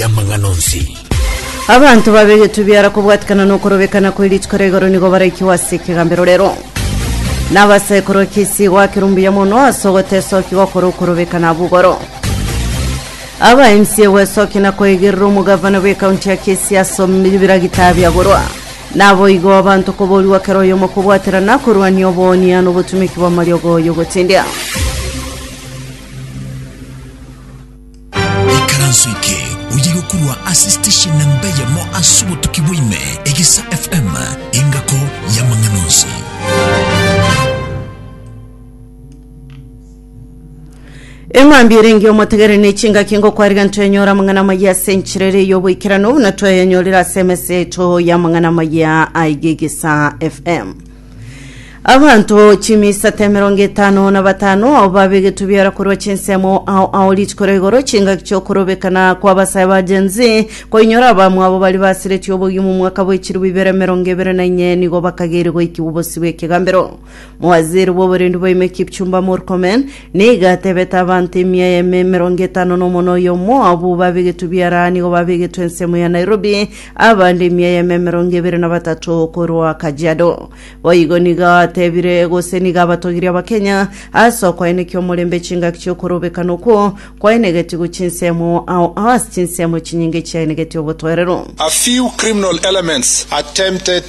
y'amang'ana onsi. Abanto babegetwe biara kobwatikana nokorobekana kwe rituko ria igoro nigo baraikigwa ase ekegambero rero. Nabase korwa kesi gwakera ombuya mono ase ogotesoki gokora okorobekana bugoro. Aba MC gwesoki na koegerera omogavana bw'ekaunti ya Kisii ase biragita biagorwa. Naboigo abanto koborigwa kera oyomo kobwaterana korwania oboonia nobotumeki bw'amariogo y'ogotendia. Ekaranso eke oyige korwa ase station namba eyemo ase obotuki bwaime, Egesa FM, engako y'amang'ana onsi. eng'ambi ere engiya omotegere ne chingaki ngokwariga ntwenyora amang'ana amaya ase enchera ere y'oboikeranu buna tweyanyorire ase emesa yaito y'amang'ana amaya aigegesa fm Abanto chimisato emerongo etano na batano ao babegetwe biara korwa chinsemo ao ao rituko ria igoro chingaki chiokorobekana kw'abasae ba Gen Z koinyora abamwabo baria basiretie obogima omwaka bw'echiru bibere emerongo ebere na inye nigo bakageire goikigwa obosio bw'ekegambero. Mowaziri bw'oborendi bwaime Kipchumba Murkomen nigo atebete abanto emia emerongo etano na omonwa oyomo abwo babegetwe biara nigo babegetwe ensemo ya Nairobi Abande emia eyemo emerongo ebere na batato korwa Kajiado. Boigo nigo atebire gose nigo abatogirie Abakenya ase okoenekia omorembe chingaki chiokorobekana okwo kwaenegetigwe chinsemo ao ao ase chinsemo chinyinge chiaenegetie obotwerero. A few criminal elements attempted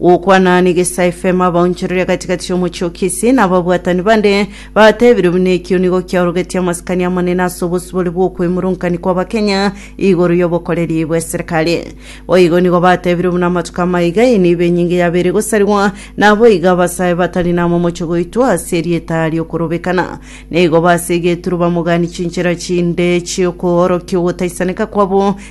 Gokwana negesa efemo abaonchoreria gati-gati y'omochie o Kisii na ababwatani bande batebirie buna ekio nigo kiaorogetie amasikani amanene ase obosibore bw'okwemurunkaini kw'Abakenya igoro y'obokoreri bw'eserikari. Boigo nigo batebirie buna amatuko amaiga eye nibo enyinge yabeire gosarigwa naboigo abasae batari namomocho goitwa ase erieta ri'okorobekana. Nigo base egeturuba mogani chinchera chinde chi'okoorokia ogotaisaneka kwabo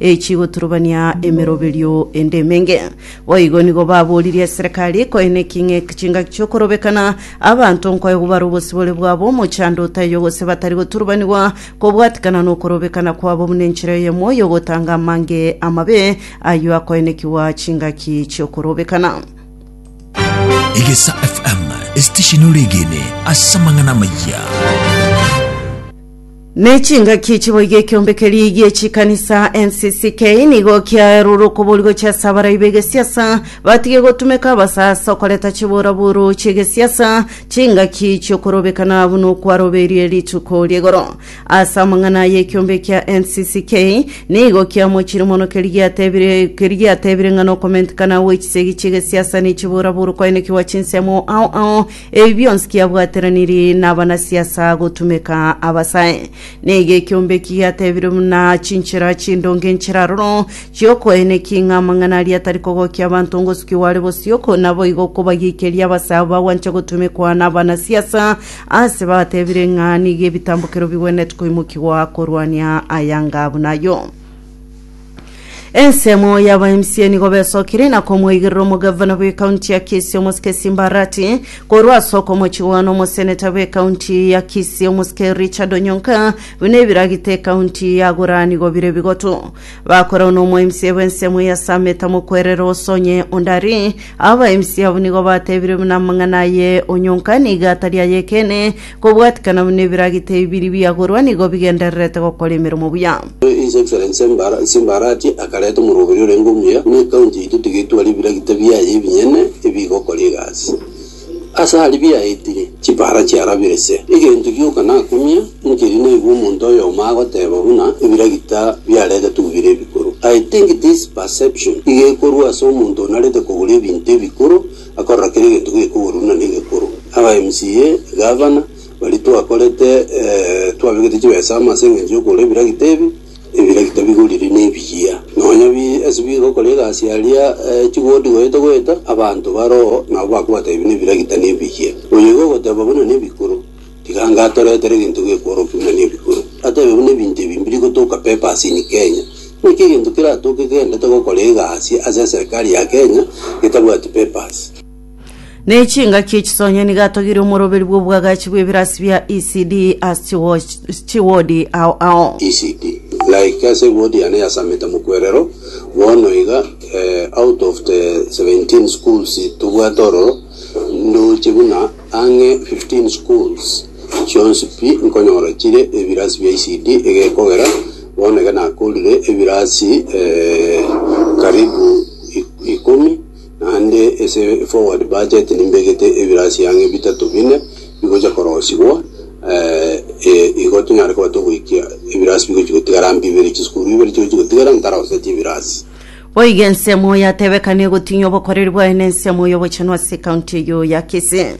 echi goturubania emeroberio ende emenge. Boigo nigo baboririe eserekari koene king'e chingaki chi'okorobekana abanto nkoyo gobara obosibore bwabo omochando otaiyo gose batari goturubanigwa kobwatikana nokorobekana kwabo buna enchera eyemo y'ogotanga amange amabe ayio akoenekigwa chingaki chi'okorobekana. Egesa FM, esitesheni ore egene ase amang'ana amaya. Ne chingaki chiboiga ekiombe keria gie chikanisa NCCK nigo kiaerure okobori gochia ase abarai b'egesiasa batige gotumeka abasa ase okoreta chiburaburu chi'egesiasa chingaki chiokorobekana buna okwaroberie rituko ri'egoro. Ase amang'ana aya ekiombe kia NCCK nigo kiamochirie mono keria giatebire keria giatebire ng'a nokomentekana gwe chisegi chi'egesiasa ne chiburaburu koenekigwa chinsemo ao ao Ebi bionsi kiabwateraniri nabanasiasa gotumeka abasae. Nigo ekiombe eki giatebirwe buna chinchera chindonge nchiraroro chiokoenekia ing'a amang'ana aria atari kogokia abanto ngosukiwa are bosio, ko naboigo kobagiikeria abasae abo bagwancha gotumekwa nabanasiasa, ase batebire ng'a nigo ebitambokero bigwenerete koimokigwa korwania ayanga buna ayio. Ensemo y'aba MC nigo besokire na komoigerera omogavana bw'ekaunti ya Kisii omosike Simba Arati korwa ase okomochigwa n'omoseneta bw'ekaunti ya Kisii omosike Richard Onyonka buna ebiragite ekaunti yagora nigo bire bigotu bakorau n'omo MC bw'ensemo ya Sameta Mokwerere Osonye Ondari aba MC abo nigo batebire buna amang'ana aye Onyonka nigo atari ayekene Kobwatikana buna ebiragita ebi biria biagorwa nigo bigendererete gokora emeremo buya. His Excellency Nsimbarati akareta omoroberi orenge omuya buna ecounty yaito tigetware ebiragita biaye ebinyene ebigokora egasi ase aria biaetire chipara chiarabire se egento gioka nakumia nkeri naigwe omonto oyomo agoteba buna ebiragita biaretetwe bire ebikoro I think this perception iga ekorwa ase omonto onarete kogora ebinto ebikoro akorora kera egento gekoborwa na negekoro. Aba MCA, Gavana, baria twakorete twabegete chibesa amo ase engencho yokogora ebiragita ebi, ebiragita bigorire nebiya. Nonya bi ase bigokora egasi aria chigodi goeta goeta, abanto baroo nabo bakobwata ebi na ebiragita nebiya. Oyo iga ogoteba buna nebikoro, Tiga ngatoretere egento gekworokia buna nebikuro. Atebe buna ebinto ebi mbiri gotoka papers in Kenya. Naki egento keratoke kegendete gokora egasi ase eserikari ya Kenya getabwati papers. Ne chingaki echisonye nigo atogire omoroberi bw'oboagachi bw'ebirasi bia ECD ase chiwo- chiwodi ao ao. ECD. Like ase ewodi yane ya Sameta Mokwerero, bono iga eh, out of the 17 schools tobwate ororo, ndoche buna Ang'e 15 schools chionsi pi nkonyora chire ebirasi bia ECD egekogera bono iga nakorire ebirasi karibu ikomi naende ase forward budget nimbegete ebirasi ang'e bitato bine bigocha korosigwa igo tonyare koba togoikia ebirasi bigochi gotigara mbibe chisukuru ibere chigochi gotigara ntaroseti ebirasi. Boigo ensemo yatebekana egotinya obokoreri bwaye na ensemo y'obochenu ase ekaunti eyio ya Kisii.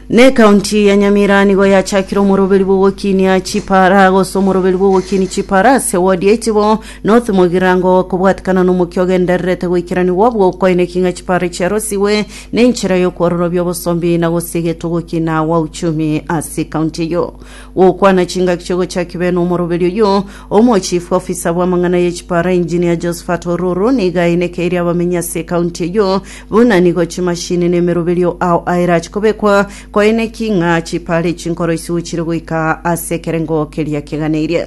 Na ekaunti ya Nyamira nigo yachakire omoroberi bw'ogokinia chipara gose omoroberi bw'ogokinia chipara ase wodi ya Itibo North Mogirango kobwatikana na omokia ogendererete goikeranigwa bw'okoineki ng'a chipara chiarosigwe na enchera y'okwororobia obosombi na gosigetwa ogokina gwa uchumi ase ekaunti eyio. Gokwana chingaki chi'ogochaki bene omoroberi oyio Omochief officer bw'amang'ana ye chipara Engineer Josephat Ororo nigo ainekeirie abamenyi ase ecounty eyio buna nigo chimashini na emeroberio ao aerache kobekwa koaineki ng'a chipara echi nkoro isiko chire goika ase ekerengo keria keganeirie.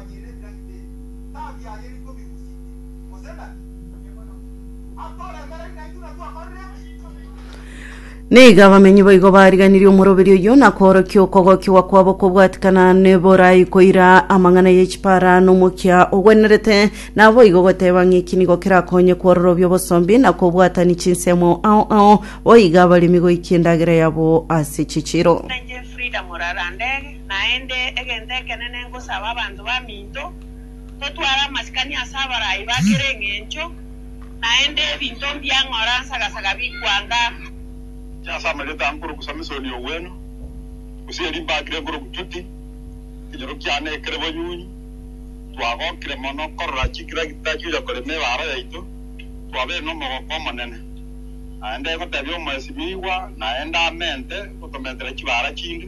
Akoinyire Daudi ere, Tabi aye riko bigusike, gose nabi? Atoremereri naintwe ng'a twakorire ebi? Nigo abamenyi boigo bariganirie omoroberi oyio na koorokia okogokigwa kwabo kobwatikana neborai koira amang'ana y'echipara n'omokia ogwenerete, naboigo goteba ng'iki nigo kerakonye kwororobia obosombi na kobwatani chinsemo ao ao boiga abaremi goikia endagera yabo ase chichiro. Inche Frida Murara Ndege, Naende egento ekenene ngosaba abanto baminto, totware amasikani ase abarai ba kera eng'encho, naende ebinto mbia ng'ora nsagasaga bikwanga. Inche ase amarieta aa nkoroku Samisoni Ogweno, gose erio mbakire nkoroku Tuti, ekenyoro kiane kere bonyunyi, twagokire mono korora chinkiragita chiocha korema ebaara yaito, twabeire nomogoko omonene. Naende egotebia omoesimigwa naende amente gotometera chibaara chinde.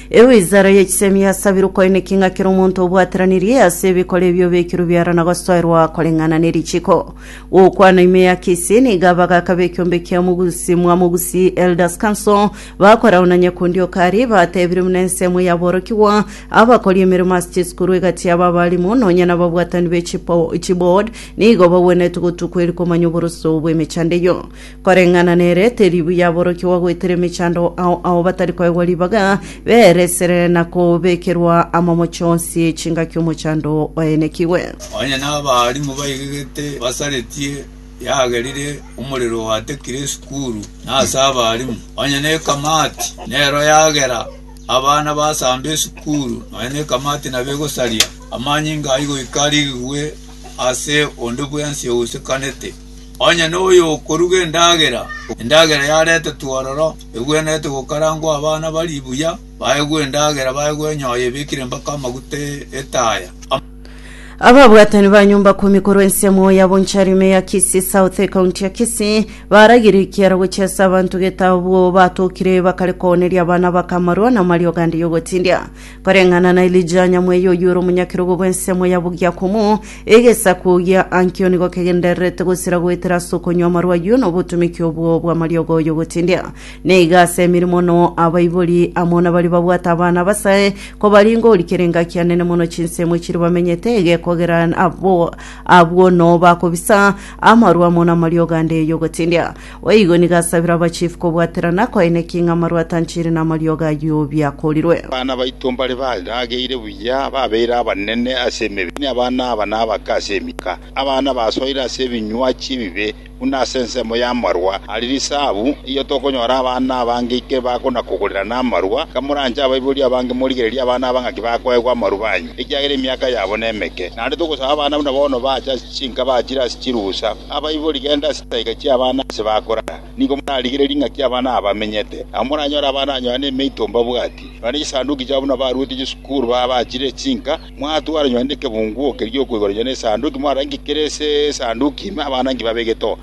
Ewizara ye chisemi yasabire okoineki ng'a kera omonto obwateranirie ase ebikore ebi obekirwe biara na gosoerwa koreng'ana ne richiko. Gokwana ime ya Kisii nigo abagaka b'ekiombe kia Omogusi mwa Mogusi Elders Council bakorao na Nyakundi Okari batebire buna ensemo yaborokigwa abakori emeremo ase chisukuru egati yabo abalimu nonya nababwatani be chiboard nigo bagwenerete gotukwa eri komanya oboroso bw'emechando eyio. Koreng'ana nere, teri buya aborokigwa goetera emechando ao ao batari koegwa ribaga, beresere na kobekerwa amamocho onsi chingaki omochando oenekigwe. Onye nabaalimu baigegete basaretie yagerire omorero oatekire esukuru na ase abaalimu, onye nekamati nero yagera abana basamba esukuru, nonya nekamati nabo egosaria amanyinga ai goika arigigwe ase onde bwensi ousekanete. Onye noyokoruga endagera, endagera yaretetwe ororo, egwenerete gokarangwa abana barie buya, baegwe endagera, baegwe enyoyo ebekire mpaka amaguta e- etaya. Ababwatani ba nyomba kumi korwa ensemo ya bonchari ime ya Kisii South ekaunti ya Kisii baragirie ekiara gochia ase abanto gete abwo batokire bakare kooneria abana bakamarwa na amariogo ande y'ogotindia. Koreng'ana na Elija nyamweya oyio ore omonyakerogo bw'ensemo ya Bogiakomo, egesaku gia Ankio nigo kegendererete gosira goetera ase okonywa amarwa ayio na obotomeki obwo bw'amariogo y'ogotindia. Na iga ase emeremo no abaibori amo nabaria babwate abana abasae kobaringa orikera engaki enene mono chinsemo chiria bamenyete egekogera abo abwo no bakobisa amarwa amo namariogo ande y'ogotindia. Boigo nigo asabire abachifu kobwaterana koineki ng'a amarwa atanchire namariogo ayio biakorirwe. Abana baito mbare barageire buya, babeire abanene ase emebere, abana aba nabake ase emika. Abana basoire ase ebinywachi ebibe, buna ase ensemo y'amarwa are risabu. Erio tokonyora abana abange ike bakona-kogorera namarwa. Iga moranche abaibori abange morigererie abana aba ng'aki bakoegwa amarwa baanywe, ekiagera emiaka yabo nemeke. Naende togosaba abana buna bono baache ase chinka bachire ase chirusa. Abaibori, genda ase chisaika chi'abana ase bakorara, nigo morarigererie ng'aki abana aba bamenyete. Nabo moranyore abana ba Yohana emeito mbabwati, nonye chisanduki chiabo buna baruete chisukuru baba bachire chinka. Mwatwara nonye nekebungu oke gi'okoigora nonye nesanduki, mwarore nki kere ase esanduki ime, abana nki babegete oo.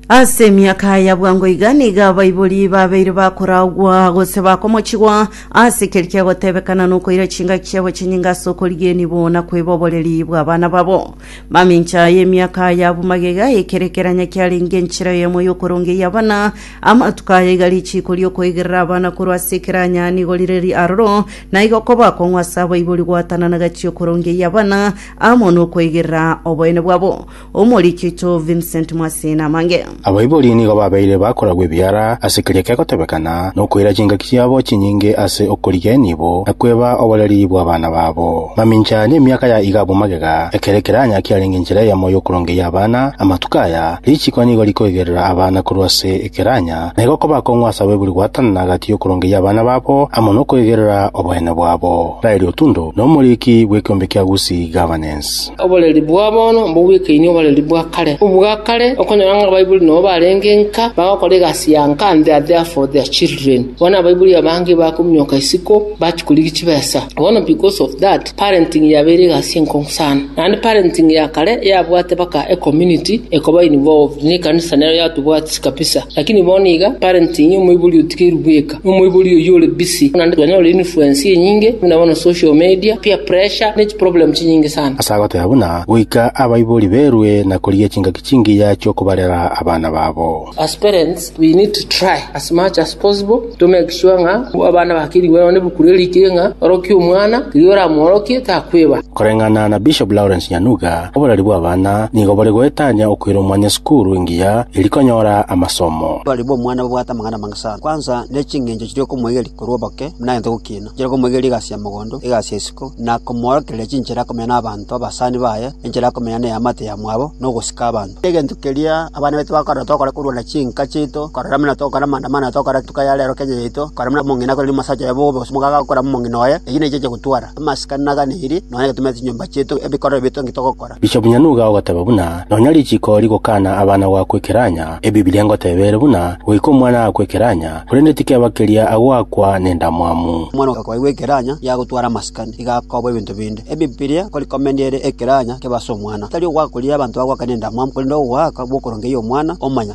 Ase emiaka ya bwango iga nigo abaibori babeire bakoragwa gose bakomochigwa ase ekeri kiagotebekana nokoira chingaki chiabo chinyinga ase okorigienigwa na kweboboreria bw'abana babo. Mamincha y'emiaka aya abwo magega, ekerekeranya kiarenge enchera eyemo y'okoronga ey'abana. Amatuko aya iga richiiko ri'okoigerera abana korwa ase ekeranya nigo rire ri'aroro, na igo koba akong'u ase abaibori goatana na gati y'okoronga ey'abana amo nokoigerera oboene bwabo. Omoriki oito Vincent Mwaseni amange. Abaibori nigo babeire bakoragwa ebiara ase keria kegotebekana nokoira chingaki chiabo chinyinge ase okorigenia ibo na kweba oboreri bw'abana babo. Mamincha nemiaka ya iga abwo magega, ekero ekeranya kiarenge enchera eyemo y'okorongeyia abana, amatuko aya, richiko nigo rikoigerera abana korwa ase ekeranya, na igo koba akong'u ase abaibori goatanana gati y'okorongeyia abana babo amo nokoigerera oboyene bwabo. Raeli Otundo, nomoriki bw'ekeombe kia Gusii Governance. Oboreri bwa bono mbobwekaini oboreri bwa kare. Obwa kare okonyora ng'a abaibori nabo barenge nka, bagokora egasi ya nka and they are there for their children. Bono abaibori abange bakominyoka isiko bachia korigia chibesa. Bono because of that, parenting yabeire egasi enkong'u sana. Naende parenting ya kare yabwate baka e community ekoba involved, ne ekanisa nero yatobwatia kabisa. Lakini bono iga parenting omoibori otigeirwe bweka. Omoibori oyio ore busy naende twanyora influence enyinge buna bono social media, peer pressure ne chiproblem chinyinge sana. Ase agoteba buna goika abaibori berwe na korigia chingaki chingiya chi'okobarera abana babo. As parents we need to try as much as possible to make sure ng'a abana bakerigwe nonya nebuku riria rikire ng'a orokie omwana riria oramworokie takweba. Koreng'ana na Bishop Lawrence Nyanuga, oborari bw'abana nigo bore goetania okoira omwanya esukuru engiya eri konyora amasomo. Oborari bw'omwana bobwate amang'ana amange. Sa kwansa ne ching'encho chiria okomoigeria korwa oboke, buna egento gokina, enchera okomoigeria egasi ya mogondo, egasi ya isiko, na komoorokereria chinchera akomenya nabaanto abasani baye, enchera akomenya neamate yamwabo, na ogosika abanto. Egento keria abana baito bakorera tokore korwa na chinka chiaito, korera buna tokore amaandamano aya tokore etuka ya rero Kenya yaito, korera buna omong'ina akoreri omosacha oye bobe, gose omogaka akorera omong'ina oye, eyio nechiache gotwara. amasikani naganeirie, nonya getumete chinyomba chiaito ebikorero biaito naki togokora. Inche omuya nigo agoteba buna nonya richiko rigokana abana goakwa ekeranya, Ebibilia ngoteba ere buna goika omwana agakwa ekeranya, korende tikeba keria agoakwa nendamwamu. Omwana okoigwa ekeranya nigo agotwara amasikani, nigo akoba ebinto binde. Ebibilia nkori komenya ere ekeranya kebe ase omwana, tari ogoaka koria abanto bagoaka nendamwamu, korende ogoaka bw'okorongeria omwana, omanya.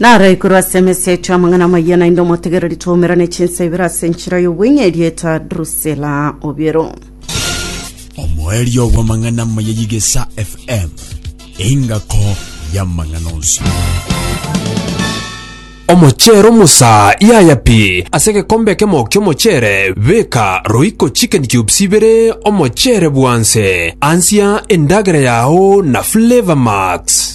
Naro igoro ase emesa yaito y'amang'ana amaya, naende omotegereri twaumerane chinsa ibere ase enchera y'obweng'e erieta Drusila Obiero. Omoerio bw'amang'ana amaya y'Igesa FM, engako y'amang'ana onsi. Omochero musa yaya pi ase egekombe ekemo ki'omochere beka roiko chicken cubes ibere omochere bwanse ansia endagera yao na flavor max.